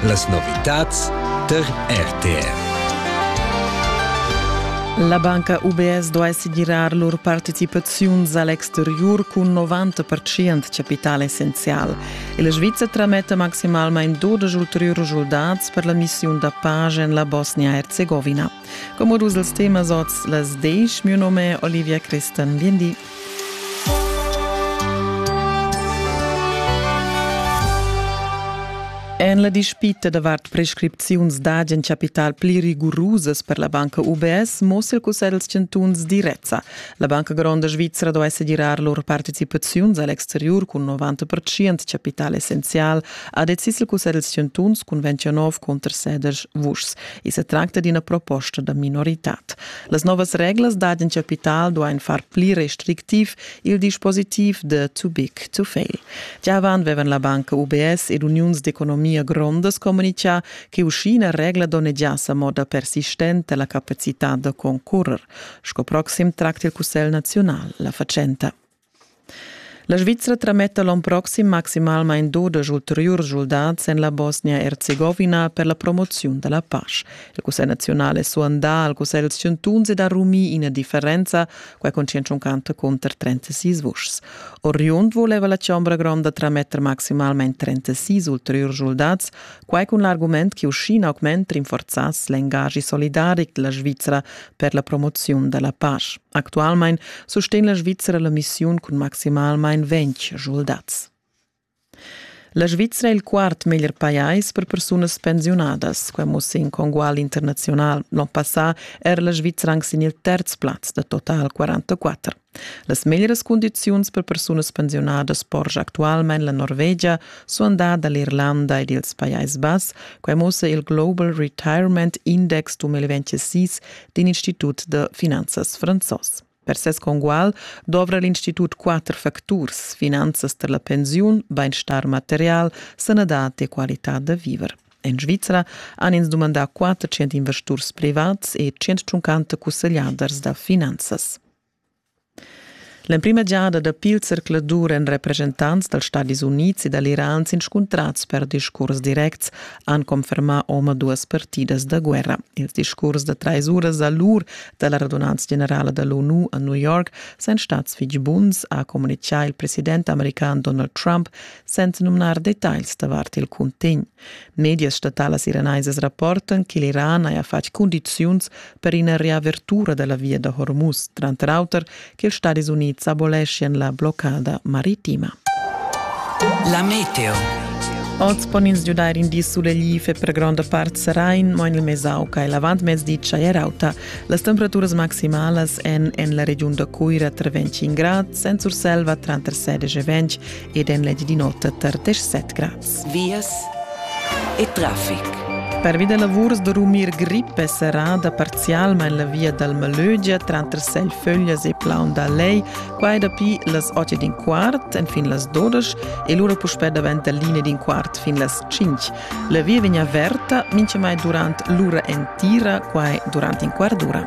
Las novitads tar RTR. La banca UBS duai segirar lur participaziuns a l'exteriur cun 90% chapital essenzial. E la Svizra trametta maximalmain 12 ulteriurs schuldats per la missiun da pace en la Bosnia-Herzegovina. Como dus els temas oz las desch. Mio nome Olivia Christen. Biendi. En la dispita davart prescripziuns d'agen capital pli rigurusas per la banca UBS mossa il Cussegl dels Chantuns direzza. La Banca Gronda Svizzera dovesse girar lur partecipaziuns all'exterior cun 90% capital essenzial, ha decis il Cussegl dels Chantuns cun 29 contr sedirs vuschs. I se tracta d'ina proposta da minoritad. Las novas reglas dad in capital duain far pli restrictiv il dispositiv de too big to fail. Gia avant vevan la banca UBS ed uniuns d'economia grondas comunicà che uschina regla donnegiasse a moda persistente la capacità da concorrer. Sco proxim tracta il Cussegl nazional la facenta. La Svizra trametta l'onn proxim maximalmain dudesch ulteriurs schuldads en la Bosnia-Erzegovina per la promoziun da la pasch. Il Cussegl naziunal è suandà al Cussegl dals chantuns ed ha rumì ina differenza, quai con 150 cunter 36 vuschs. Oriund voleva la Chombra Gronda trametter maximalmain 36 ulteriurs schuldads, quai con l'argument che uschina augment rinforzass l'engagi solidaric della Svizra per la promoziun da la pasch. Actualmein sustegn la Svizzera la missiun cun maximalmein ventg schuldats. La Svizzera è il quart meglier pajais per persunas pensiunadas. Quai mussa in congual internazional. L'on passà era la Svizzera anc sin il terz plaz da total 44. Las meglieras condiziuns per persunas pensiunadas porscha actualmein la Norvegia suandada l'Irlanda ed ils Pajais Bass. Quai mussa il Global Retirement Index 2026 d'in institut da finanzas franzos. Per ses congual dovra l'institut quatter facturs, finanzas per la pensiun, bainstar material, sanadad e qualità da viver. En Svizra han ins dumandà 400 investurs privats e 150 cussegliaders da finanzas. L'emprima giada dapi il zercladur èn representants dals Stadis Unids e dall'Iran s'inscuntrads per discurs directs, han confermà omaduas partidas da guerra. Ils discurs da trais uras da lur da la radunanza generala da l'ONU a New York san stads fitg buns, ha communitgà il president american Donald Trump, senza numnar detagls davart il cuntegn. Medias statalas iranaisas rapportan che l'Iran haja fatg cundiziuns per ina reavertura da la via da Hormuz, tranter auter ch'ils Stadis Unids aboleschian la bloccada maritima. La meteo. Oz pon ins giudair in di sulegl per gronda part serain, mo en il Mesauca e l'avantmezdi tschaier-auta. Las temperaturas maximalas èn en la regiun da Cuira tra 25 grad, en Surselva tranter 16 e 20 ed en l'egl di nota tar 17 grad. vias e traffic. Pervi da lavurs da rumir grip è serrada parzialmain la via dal Malögia tranter Selföglias e Plaun da Lei, quai dapi las 8 ed in quart enfin las 12 e lura puspè davent da linea d'in quart fin las 5. La via vegn averta mintgamai durant l'ura entira, quai durant in quart d'ura.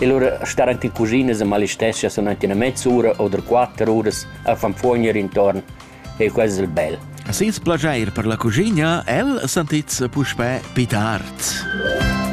E lura star anc in cuschina e malistescha sun anc ina mezz'ura oder quatter uras a fan fuogner intorn e quel es il bel. Ses plaschair per la cuschina, el sentits puspè pit art.